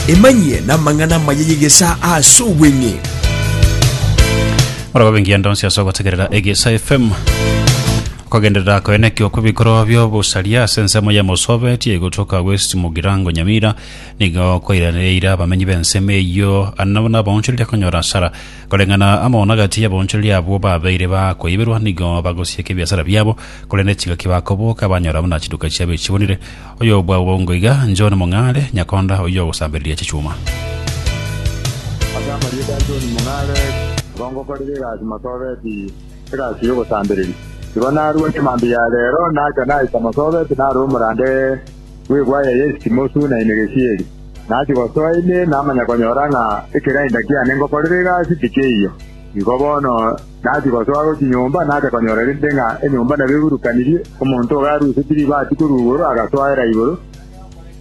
Emanyie n'amang'ana amaya y'egesaa ase obweng'e. Morogobe engiya ndonsi ase ogotegerera egesa fm okogenderera koenekio kw'ebikorwa by'obosaria ase ensemo ya mosobe eti egotoka west mugirango nyamira nigo koiraneire abamenyi b'ensemo eyio nabo nabaonchoreri akonyora asara koreng'ana amaono agati y'abaonchoreri abwo babeire bakoiberwa nigo bagosieka ebiasara biabo korende chingaki bakoboka banyora buna chiduka chiabo echibonire Oyobwagongo iga, John Mong'are, nyakonda oyio ogosambereria chichuma. Ase amarieta a John Mong'are, nigo ngokorera egasi Marsabit, egasi y'ogosambereria. Igo narua chimambia ya reero nacha naika Marsabit nare omorande bw'egwaya ya esitimo suna ime gesieri. Nachia gosoa ime namanya konyora ng'a ekerainda kiane ngokorera egasi tikeiyo. Igo bono. Naki gosoa gochia nyomba nacha konyora rende ng'a enyomba nabegurukanirie, omonto ogo arusetie ribaati korwa igoro agasoera igoro,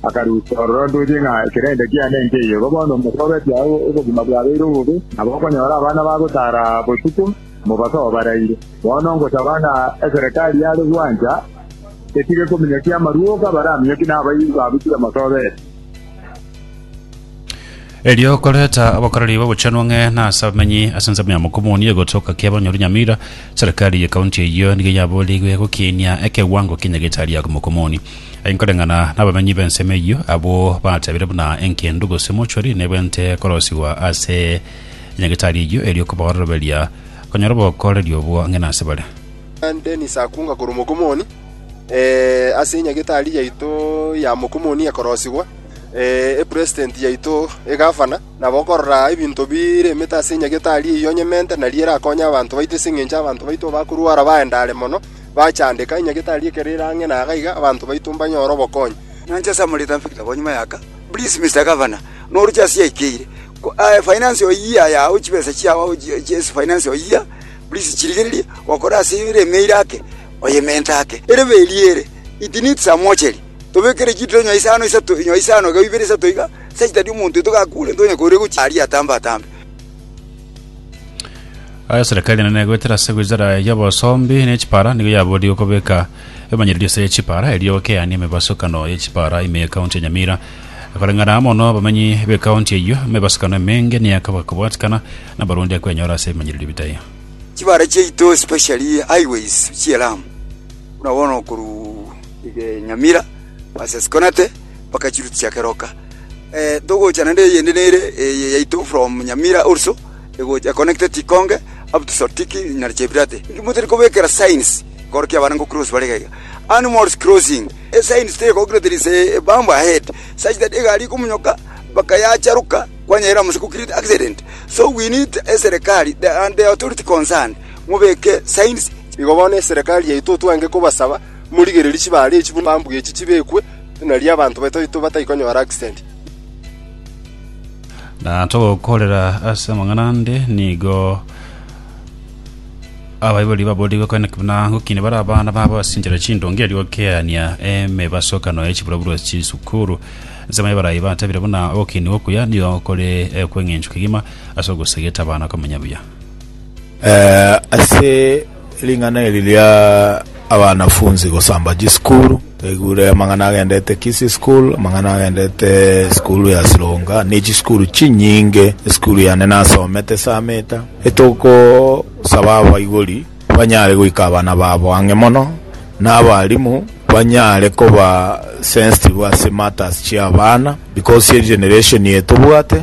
akarusia ororo ndoche ng'a ekerende kiane nkeiyo. Igo bono mosobetie agwo obogima bwabeire obobe, nabo okonyora abana bagotara botuko, mobasoe baraire. Bono ngosaba ng'a eserekari yare gwancha etige kominyokia amaruoka, baraminyokie nabairi babu tibamosobetie. Erio okoreta abakoreri b'obochenu ang'e na ase abamenyi ase ensemo ya Mokomoni egotoka kia abanyori Nyamira. Serikali ye kaunti eyio nigo yaboorigwe gokiinia ekewango kia nyagetari ya Mokomoni. Aye nkoreng'ana nabamenyi b'ensemo eyio, abwo bateebire buna engendu gose mochori nebwente korosigwa ase nyagetari eyio erio kobaoroberia konyora obokoreri obwo ang'e na ase bare. Dennis Akunga korwa Mokomoni, Ase enyagetari yaito ya Mokomoni ekorosigwa, Epresident yaito egavana, na bokorora ebinto bire emete ase enyagete aria eyio onyemente, nario erakonye abanto baito, ase engencho abanto baito abakorwara baendare mono, bachandeka, enyagete aria ekero ere ang'e na gaiga, abanto baito mbanyore obokonyi. Nyancha ase amorita mpe kitabo nyuma y'aka. Please Mister Governor, noruche ase yaikeire, finance your year yao chibesa chiao ase finance your year, please chirigererie gokora ase ere emeire ake, oyemente ake. Erebe eria ere, it needs a mortuary. Tobekere chituro inyoa isano isato, inyoa isano igao ibere isato iga, sechita eria omonto oito gakuurete onye koria ogochia aria atambe-atambe. Aya serikali enene egoetera ase wizara y'obosombi ne chipara nigo yaboorire okobeka emanyererio ase chipara erio gokeania emebasukano ye chipara ime ye county ya Nyamira. Koreng'ana mono abamenyi be county eyio, emebasukano emenge niyo ekaba kobwatikana na abarundi akwenyora ase ebimanyererio bitaya. Chibara chiaito especially highways chi'elamu, buna bono korwa. Nyamira, Basesikonate, mpaka chiruti chia keroka. Togocha naende eyende nere eye yaito from Nyamira also, egocha econnected Tikonge up to Sotiki na Chepirate. Motari kobekera signs ekero kia abana nkocross bare iga iga. Animals crossing, esigns teri ekogokina there is a bump ahead such that egari ekomonyoka mpaka yacharoka kwanyerera amo gose ko create accident. So we need eserekari and the authority concerned mobeke signs. Igo bono eserekari yaito twange kobasaba Morigererie chibaare echi buna chibambu echi chibekwe, nario abanto bataito batai konyora accident. Na togokorera ase amang'ana ande nigo abaibori baborigwe kore naki buna gokina bare abana babo ase enchera chindonge erio gokeania emebasokano ya chiburoburo chisukuru. Nsemo y'abarai batebire buna ogokinigwa okuya nigo kore ekweng'enchwa kegima ase ogosegeta abana komenya buya. Ase Ring'ana eri ria abanafunsi gosamba chisukuru, twaigure amang'ana agendete Kisii School, amang'ana agendete esukuru ya Sironga, ne chisukuru chinyinge. Esukuru yane nasomete Sameta, etogosaba abaibori banyare goika abana babo ang'e mono, na abalimu banyare koba sensitive ase matters chi'abana because egeneration eye tobwate,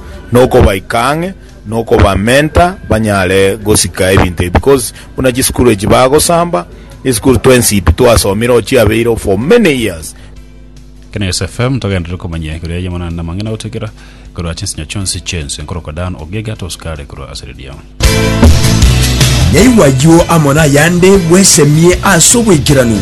nokobaika ang'e nokobamenta banyare gosika ebinto ebi because buna chisukuru echi bagosamba esukuru twensi pi twasomire or chiabeire for many years Kina Yes FM togenderere komanya igoro yaye mana namang'ina gotigera korwa chinsinya chionsi chiense nkorokwa Dan Ogega tosukare korwa ase redio. Yaigwa ayio amo nayande bwesemie ase oboikeranu.